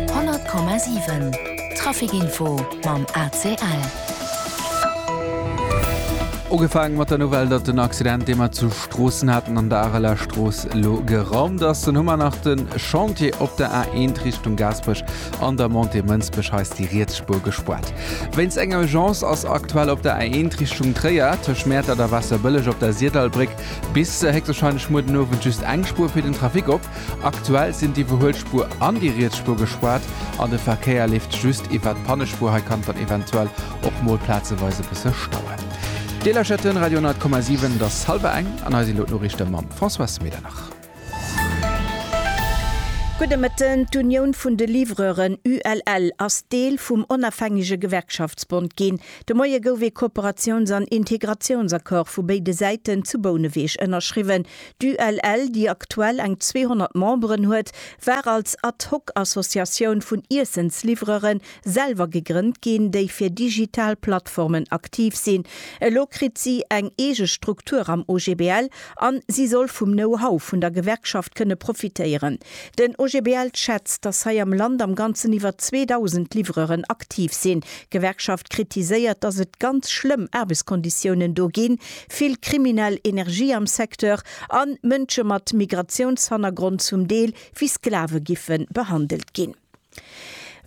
100,7 Trafic info mam ACL. Ugefaang mat der Nouvelle, datt den Accident, dee mer zu Stroossen haten an der Areler Strooss, elo geraumt ass. Dunn hu mer nach de Chantier op der A1 Richtung Gaasperech an der Montée Mënsbech, hei ass déi riets Spuer gespuert. Wéinst enger Urgence ass aktuell op der A1 Richtung Tréier tëscht Mäertert a Waasserbëlleg op der Sirdallbréck bis héchstwarscheinlech muer den Owend just eng Spuer fir den Trafic op. Aktuell sinn d'Iwwerhuelspuer an déi riets Spuer gespaart an de Verkéier leeft just iwwert d'Pannespuer. Hei kann et dann eventuell och mol plazeweis e bësse stauen. Deeler Chaîne Radio 10,7, et ass hallwer eng an hei sinn elo d'Noriichte mam Françoise Medernach. Gudde Mëtten. D'Unioun vun de Livreuren, ULL, ass Deel vum Onafhängege Gewerkschaftsbond ginn. De Moie gouf ee Kooperatiouns an Integratiounsaccord vu béide Säiten zu Bouneweg ënnerschriwwen. D'ULL, déi aktuell eng 200 Memberen huet, war als Ad-hoc-Associatioun vun Iessensliwwerere selwer gegrënnt ginn, déi fir digital Plattformen aktiv sinn. Elo kritt si eng eege Struktur am OGBL an si soll vum Know-how vun der Gewerkschaft kënne profitéieren. Den OGBL schätzt, dass hei am Land am Ganzen iwwer 2.000 Liwwereren aktiv sinn. D'Gewerkschaft kritiséiert, dass et ganz schlëmm Aarbechtskonditiounen do ginn, vill kriminell Energie am Secteur an Mënsche mat Migratiounshannergrond zum Deel wéi Sklave giffen behandelt ginn.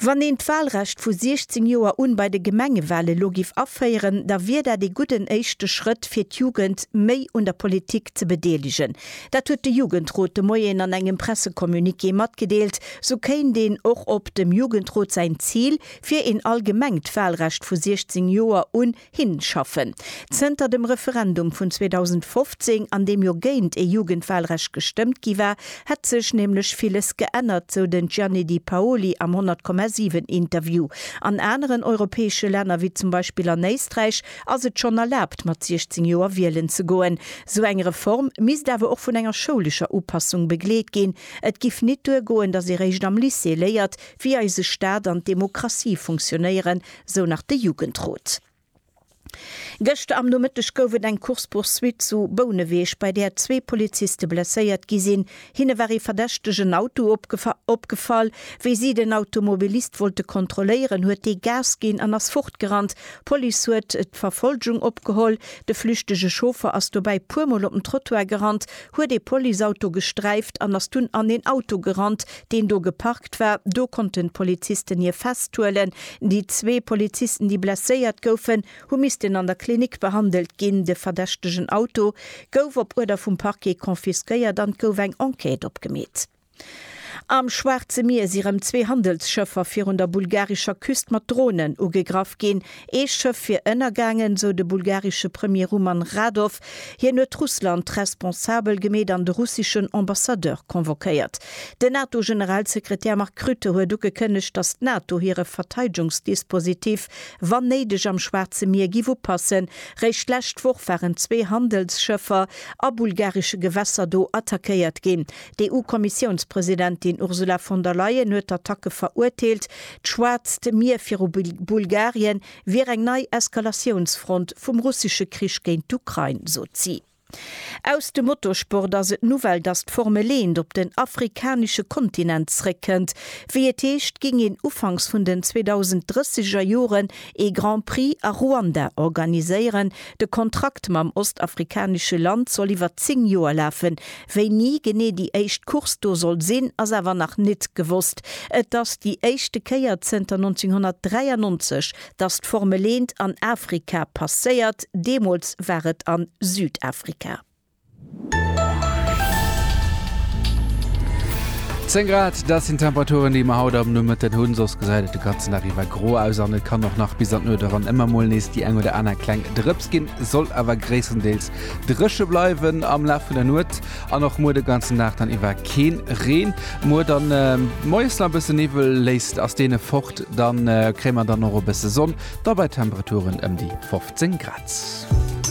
Wann een d'Wahlrecht vu 16 Joer un bei de Gemengewahl elo giff aféieren, da wier dat ee gudden éischte Schrëtt fir d'Jugend méi un der Politik ze bedeelegen. Dat huet de Jugendrot de Moien an engem Pressecommuniqué matgedeelt. Sou kéint een och op dem Jugendrot säin Zil fir een allgemengt Wahlrecht vu 16 Joer un Hinschaffen. Zënter dem Referendum vun 2015, an deem jo géint ee Jugendwahlrecht gestëmmt gi war, hätt sech nämlech villes geännert, sou den Gianni Di Paoli am 100,7 Interview. An aneren europäesche Länner, wéi zum Beispill an Éisträich, ass et schonn erlaabt, mat 16 Joer wielen ze goen. Sou eng Reform misst awer och vun enger schoulescher Upassung begleet ginn. Et giff nit duergoen, datt ee réischt am Lycée léiert, wéi eise Staat an d'Demokratie funktionéieren, sou nach de Jugendrot. Gëschter am Nomëtteg gouf et eng Course-poursuite zu Bouneweg, bei där zwee Poliziste blesséiert gi sinn. Hinne war ee verdächtegen Auto opgefall. Wéi si den Automobilist wollte kontrolléieren, huet dee Gas ginn an ass fortgerannt. D'Police huet d'Verfolgung opgeholl. De flüchtege Chauffer ass dobäi puermol op den Trottoir gerannt, huet ee Policeauto gesträift an ass dunn an een Auto gerannt, deen do geparkt war, do konnten d'Polizisten hie festhuelen. Déi zwee Polizisten, déi blesséiert goufen, hu missten an der Klinik behandelt ginn. De verdächtegen Auto gouf op Uerder vum Parquet confisquéiert an et gouf eng Enquête opgemeet. Am Schwaarze Mier si rëm zwee Handelsschëffer virun der bulgarescher Küst mat Dronen ugegraff ginn. Ee Schëff wier ënnergaangen, esou de bulgaresche Premier Ruman Radow. Hien huet Russland responsabel gemeet an de russeschen Ambassadeur convoquéiert. Den NATO-Generalsekretär Mark Rutte huet ugekënnegt, datt d'NATO hire Verteidungsdispositif, wann néideg, am Schwaarze Mier géif upassen. Réischt d'lescht Woch waren zwee Handelsschëffer a bulgaresche Gewässer do attackéiert ginn. D'EU-Kommissiounspresidentin Ursula von der Leyen huet d'Attacke verurteelt. D'Schwaarzt Mier viru Bulgarien wier eng nei Eskalatiounsfront vum russesche Krich géint d'Ukrain, sot si. Aus dem Motorsport ass et d'Nouvelle, datt d'Formel eent op den afrikanesche Kontinent zréckkënnt. Wéi et heescht, géing een ufanks vun den 2030er Joren ee Grand Prix a Ruanda organiséieren, De Kontrakt mam ostafrikanesche Land soll iwwer 10 Joer lafen. Wéini genee déi éischt Course do soll sinn, ass awer nach nit gewosst. Et ass déi éischte Kéier zënter 1993, datt d'Formel Eent an Afrika passéiert, deemools war et a Südafrika. Zéng Grad, dat sinn d'Temperaturen, déi mer haut am Nomëtten hunn. Soss gesäit et de ganzen Dag iwwer gro aus an et kann och nach bis an d'Nuecht eran ëmmer mol nees déi eng oder aner kleng Drëps ginn. Soll awer gréisstendeels dréche bleiwen am Laf vun der Nuet an och muer de ganzen Dag dann iwwer keen Reen. Muer dann moies nach e bësse Niwwel, léisst ass deen fort, da kréie mer dann och e bësse Sonn, da bei Temperaturen ëm déi 15 Grad.